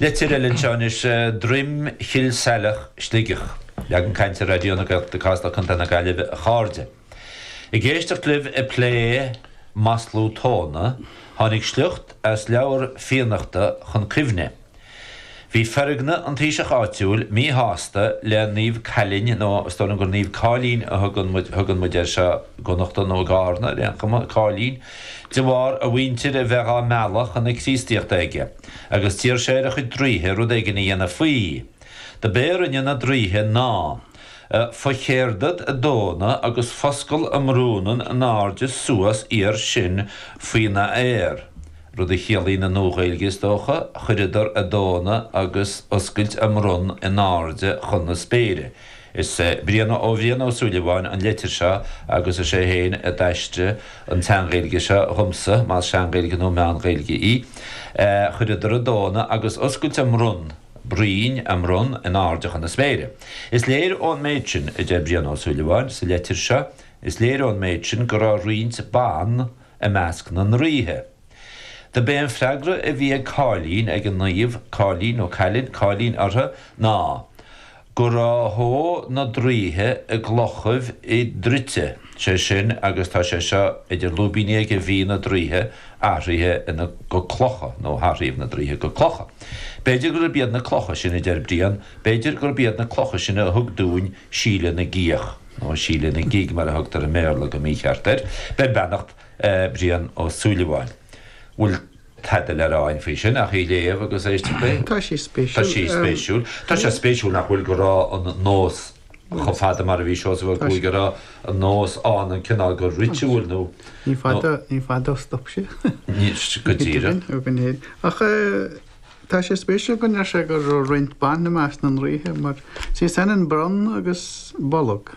Leitir eile anseo anois, Droim Chill Saileach, Sligeach, Leagan Cainte, Raidió na Gaeltachta Casla Contae na Gaillimhe a chairde. Ag éisteacht libh ag plé maslú tóna, tháinig sliocht as leabhar Fiannachta chun cuimhne. Bhí Feargna an taoiseach áitiúil míshásta le Naomh Cailin, nó is dóigh liom gur Naomh Cáilín a thugann muid air anseo i gConnachta, nó i gCárna ar aon chuma, Cáilín, De bharr a mhuintir a bheith á mealladh chun na Críostaíochta aige, agus d'iarr sé ar a chuid draoithe rud éigin a dhéanamh faoi. Do b'é a rinne na draoithe ná focheardad a dtóna agus foscal a mbronnann anáirde suas iar sin faoi na aer, rud a chiallaíonn i Nua-Ghaeilge is dócha, chuireadar a dtóna agus oscailt a mbronn in airde chun na spéire. Is é Brian ó Bhrian Ó Súilleabháin an leitir seo agus is é féin a d'aistrigh an tSean-Ghaeilge seo dhomsa, más Sean-Ghaeilge nó Meán-Ghaeilge í. Chuireadar a dtóna agus oscailt a mbronn broinn a mbronn in airde chun na spéire. Is léir ón méid sin, a deir Brian Ó Súilleabháin sa leitir seo, is léir ón méid sin go raibh roinnt ban i measc na ndraoithe. Do b'é an freagra a bhí ag Cáilín, ag an Naomh Cáilín, nó Cailin, Cáilín ortha ná go ro shó na draoithe i gclochaibh i dtraite, sé sin agus tá sé seo idir lúibíní aige bhí na draoithe athraithe ina go clocha nó hathraíodh na draoithe go clocha. B'fhéidir gurb iad na clocha sin, a deir Brian, b'fhéidir gurb iad na clocha sin a thug dúinn Síle na gCíoch, nó Síle na Gig mar a thugtar i mBéarla go mícheart air, beir beannacht Brian Ó Súilleabháin. Bhfuil tada le rá againn faoi sin ach í a léamh agus éisteacht léi? Tá sí spéisiúil. Tá sí spéisiúil. Tá sé spéisiúil nach bhfuil go raibh an nós chomh fada mar a bhí Seosamh Ó Cuaig, go raibh an nós ann an cineál de ritual nó. Ní fada, ní fada a stop sé. Go díreach. Ó go léir. Ach tá sé spéisiúil go ndeir sé go raibh roinnt ban i measc na ndraoithe mar sé sin an bronn agus bolg.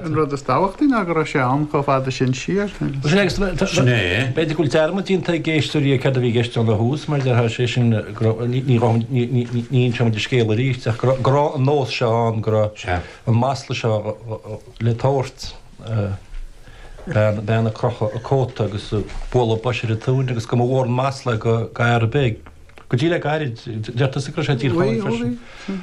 An rud is tábhachtaí ná go raibh sé ann chomh fada sin siar agus. Sin é. B'fhéidir go bhfuil dearmad déanta ag éisteoirí ar céard a bhí i gceist ann ó thús mar déarfá sé sin ní inseoimid an scéal arís ach go raibh an nós seo ann, go raibh an masla seo le tabhairt, bean ag crochadh a cóta agus ag bualadh boise ar a tóin agus go mba mhór an masla do fhear ar bith. Go dtí le gairid, deir tusa go raibh sé i dTír Chonaill freisin.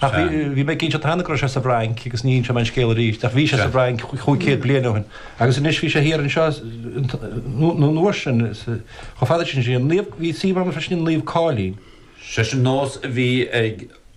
Ach bhí mé ag inseacht cheana go raibh sé sa bhFrainc agus ní inseoidh mé an scéal arís, ach bhí sé sa bhFrainc chúig chéad bliain ó shin. Agus anois bhí sé thiar anseo nó an uair sin, chomh fada sin siar. Bhí suíomh ann freisin i Naomh Cáilín. Sé sin nós a bhí ag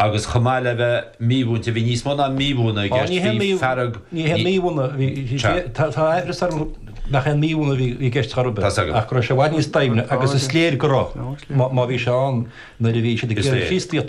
Agus chomh maith le bheith mímhúinte, bhí níos mó ná mímhúineadh i gceist, bhí fearg, ní haon mímhúineadh, bhí, tá aimhreas orm nach aon mímhúineadh a bhí i gceist chor ar bith, ach go raibh sé i bhfad níos doimhne agus is léir go raibh, má bhí sé ann nuair a bhí siad ag iarraidh Críostaíocht a